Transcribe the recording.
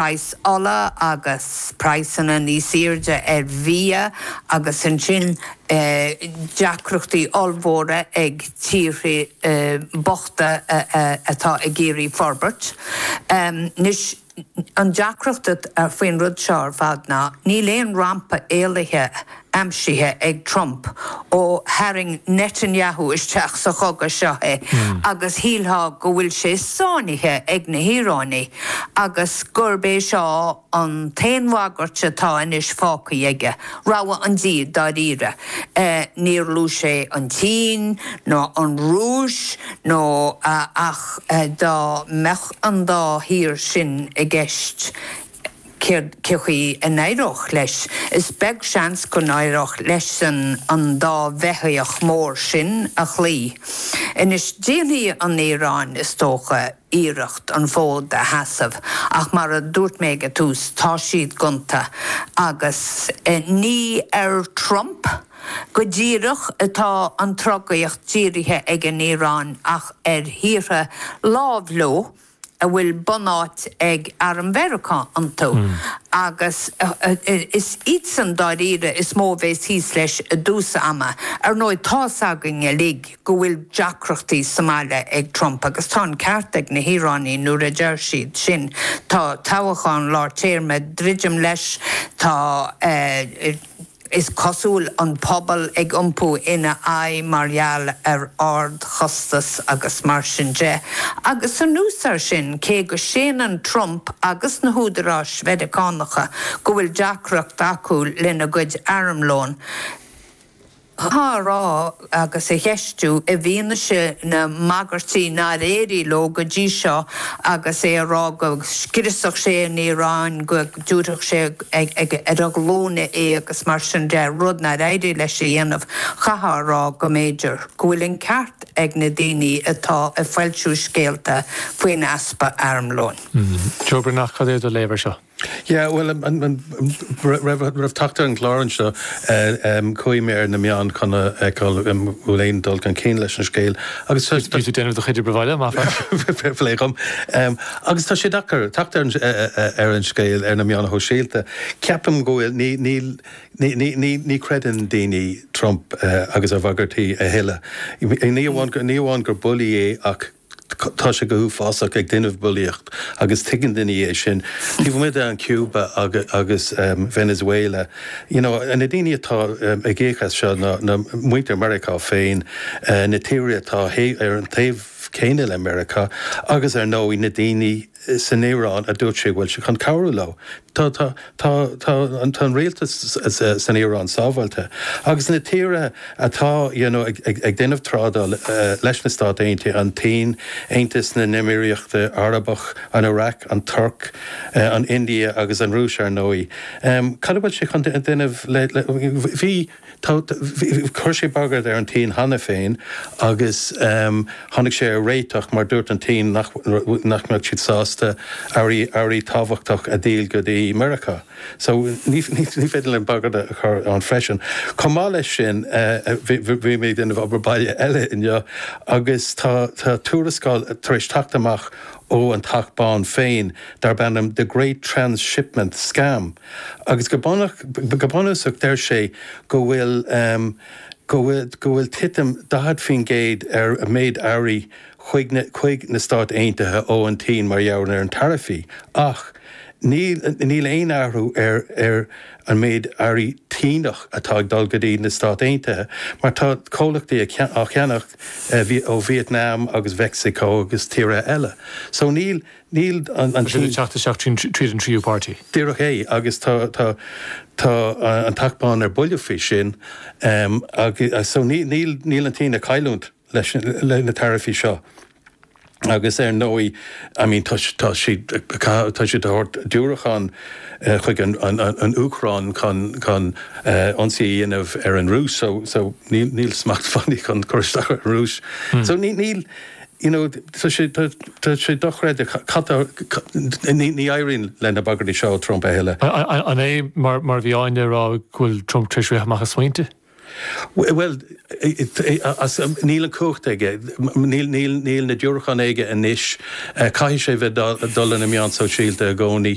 praghas ola agus praghsanna níos airde ar bhia agus ansin deacrachtaí ollmhóra ag tíortha bochta atá ag iarraidh forbairt. Anois, an deacracht faoin rud seo ar fad ná níl aon rampa éalaithe aimsithe ag Trump ó tharraing Netanyahu isteach sa chogadh seo é agus shílfeá go bhfuil sé sáinnithe ag na hIaránaigh agus gurb é seo an t-aon bhagairt atá anois fágtha aige, rogha an dá dhíogha dáiríre. Níor luaigh sé an tSín ná an Rúis nó ach dá mbeadh an dá thír sin i gceist céard, cén chaoi a n-éireodh leis? Is beag seans go n-éireodh leis-sean an dá bheithíoch mhór sin a chloí. Anois, déanfaidh an Iaráin, is dócha, iarracht an fód a sheasamh, ach mar a dúirt mé ag an tús, tá siad gonta, agus ní ar Trump go díreach atá an trodaíocht dírithe ag an Iaráin ach ar thíortha lámh leo. a bhfuil bunáit ag Arm Mheiriceá iontu, agus is iadsan dáiríre is mó a bheas thíos leis i dtús ama. Ar ndóigh, tá's againn uilig go bhfuil deacrachtaí sa mbaile ag Trump, agus tá an ceart ag na hIaránaigh nuair a deir siad sin. Tá toghachán lár téarma ag druidim leis, tá. Is cosúil an pobal ag iompú ina aghaidh mar gheall ar ardchostas agus mar sin de, agus anuas air sin, cé go séanann Trump agus na húdaráis Mheiriceánacha go bhfuil deacracht acu lena gcuid armlóin, tá á rá, agus á cheistiú, i bhfianaise na mbagairtí nár éirigh leo go dtí seo, agus é ag rá go scriosfadh sé an Iaráin, go dtabharfadh sé ar a glúine í agus mar sin de, rud nár éirigh leis a dhéanamh, chaithfeá a rá go mb'fhéidir go bhfuil an ceart ag na daoine atá ag foilsiú scéalta faoin easpa armlóin. Joe Breathnach, cad é do léamh air seo? Yeah, bhuel, roimh teacht ar an gclár anseo, chuaigh mé ar na meáin chun a fheiceáil an bhfuil aon dul chun cinn leis an scéal agus tá. Bhí tú ag déanamh do chuid oibre bhaile, maith an fear. Fair play dom. Agus tá sé deacair teacht ar an scéal ar na meáin shóisialta. Ceapaim go bhfuil, ní, níl, ní, ní, ní, ní chreideann daoine Trump agus a bhagairtí a thuilleadh. Ní amháin, ní amháin gur bulaí é ach. Tá sé go huafásach ag déanamh bulaíocht agus tuigeann daoine é sin. Taobh amuigh de Cuba agus Venezuela, you know, na daoine atá ag íoc as seo ná muintir Mheiriceá féin, na tíortha atá ar an taobh céanna le Meiriceá agus ar ndóigh na daoine, san Iaráin a dúirt sé a bhfuil sé chun cabhrú leo. Tá an rialtas san Iaráin sábháilte agus na tíortha atá ag déanamh trádáil leis na Stáit Aontaithe, an tSín, Aontas na nÉimíríochta Arabacha, an Iraq, an Tuirc, an India agus an Rúis, ar ndóigh. Cad a bhfuil sé chun déanamh le. Bhí. Chuir sé bagairt ar an tSín cheana féin agus tháinig sé ar réiteach mar dúirt an tSín nach mbeadh siad sásta earraí tábhachtacha a dhíol go dtí Meiriceá. So ní féidir linn bagairt a chur ann freisin. Chomh maith leis sin, bhí mé ag déanamh obair baile eile inniu agus tá tuarascáil tar éis teacht amach ón Teach Bán féin darb ainm The Great Transshipment Scam. agus go bunúsach deir sé go bhfuil go bhfuil titim 40% ar mhéid earraí chuig na Stáit Aontaithe ó an tSín mar gheall ar na taraifí, ach níl aon athrú ar an méid earraí Síneach atá ag dul go dtí na Stáit Aontaithe, mar tá comhlachtaí á cheannach ó Vietnam agus Mheicsiceo agus tíortha eile. So níl. Níl an Tá siad ag teacht isteach tríd an tríú páirtí. Díreach é, agus tá an Teach Bán ar buile faoi sin, so níl an tSín ag cailliúint leis na taraifí seo. Agus ar ndóigh, I mean, tá siad ag tabhairt diúracháin chuig an Úcráin chun ionsaí a dhéanamh ar an Rúis, so níl smacht fiú chun cur isteach ar an Rúis. So níl. you know tá sé tá tá sé dochreidte cad tá ní ní éiríonn le na bagairtí seo ó Trump a thuilleadh. An é mar mar a bhí Áine a rá go bhfuil Trump tar éis rith amach as smaointe? Bhuel níl an cumhacht aige níl níl níl na diúracháin aige anois caithfidh sé bheith dul ina meáin shóisialta i gcónaí